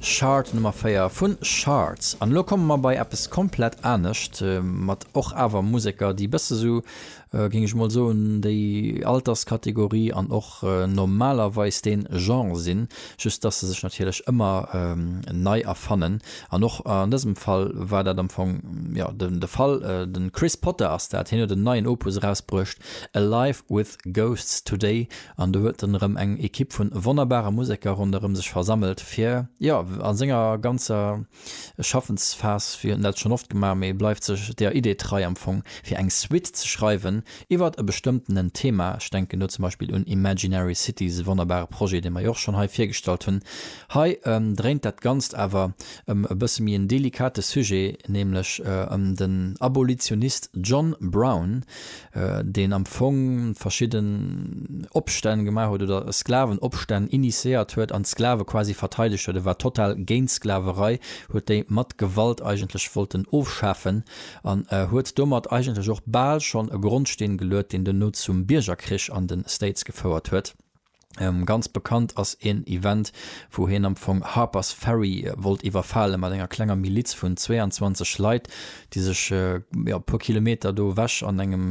Shard Nummer 4 vun Shards. An elo komme mer bei eppes komplett anescht, mat och awer Museker, déi e bësse sou, géing ech emol soen, déi Alterskategorie an och normalerweis dee Genre sinn, just dass se sech natierlech ëmmer nei erfannen. An och an dësem Fall war dat am Fong, jo, de Fall. De Chris Potter ass dat, hien huet en neien Opus erausbruecht, Alive With. Ghosts Today an do huet en erëm eng Ekipp vun wonnerbare Museker ronderëm sech versammelt fir, jo, a senger ganzer Schaffensphas, wéi huet en dat schonn oft gemaach, mee bleift sech der Idee trei am Fong, fir eng Suite ze schreiwen iwwert e bestëmmtenen Thema. Ech denken do zum Beispill un Imaginary Cities, e wonnerbare Projet, dee mer jo och schonn hei virgestallt hunn. Hei dréint dat Ganzt awer ëm e bësse méi en delikate Sujet, nämlech ëm den Abolitionist John Brown, deen am Fong verschidden Opstänn gemaach huet oder Sklavenopstänn initiéiert huet an d'Sklave quasi verteidegt huet. E war total géint d'Sklaverei, huet déi mat Gewalt eigentlech wollten ofschafen an huet domat eigentlech och bal schonn e Grondsteen geluet, deen duerno zum Biergerkrich an de States gefouert huet. Ganz bekannt ass een Event, wou hien am Fong Harper's Ferry wollt iwwerfale mat enger klenger Miliz vun 22 Leit, déi sech e puer Kilometer do ewech an engem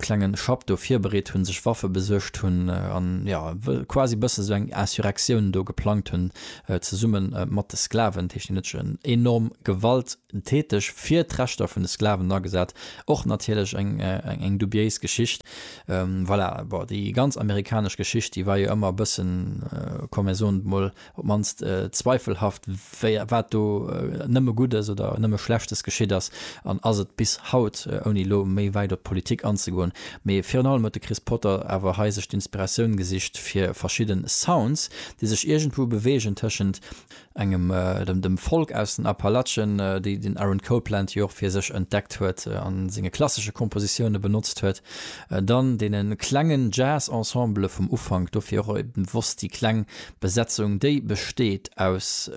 klenge Schapp do virbereet hunn, sech Waffe besuergt hunn an jo quasi e bësse sou eng Insurrektioun do geplangt hunn, zesumme mat de Sklaven. Dat heescht, deen huet sech en enorm Gewalt. täteg, fir d'Rechter vun de Sklaven agesat, och natierlech eng dubiéis Geschicht. Voilà, bon, déi ganz amerikanesch Geschicht, déi war jo ëmmer e bëssen, komm mir soen et emol, op d'mannst zweifelhaft, wéi, wat do nëmme Guddes oder nëmme Schlechtes geschitt ass an ass et bis haut, ouni elo méi wäit op d'Politik anzegoen. Mee virun allem huet de Chris Potter awer hei sech d'Inspiratioun gesicht fir verschidden Sounds, déi sech iergendwou beweegen tëschent, engem dem Folk aus den Appalachen, déi den Aaron Copland jo och fir sech entdeckt huet a senge klassesche Kompositioune benotzt huet, dann deene klengen Jazz-Ensembele vum Ufank, dofir och e bewosst déi kleng Besetzung, déi besteet aus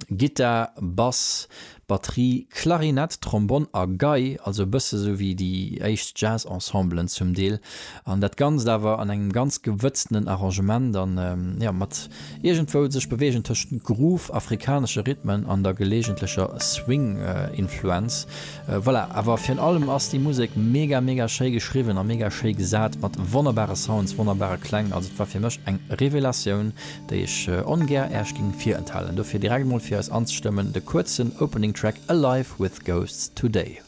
Gittar, Bass, Batterie, Klarinett, Trombonn a Gei, also e bësse sou wéi déi éischt Jazz-Ensemblen zum Deel, an dat Ganzt awer an engem ganz gewëtztenen Arrangement an, jo, mat iergendwou sech beweegen tëscht Groove, afrikanesche Rhythmen an der geleegentlecher Swing-Influenz. Voilà, awer virun allem ass déi Musek mega, mega schéi geschriwwen a mega schéi gesat, mat wonnerbare Sounds, wonnerbare Kläng, also et war fir mech eng Revelatioun. déi ech ongär Äech ging virenthalen, dofir direkt emol fir eis anzestëmmen de kuerzen Opening Track Alive with Ghosts Today.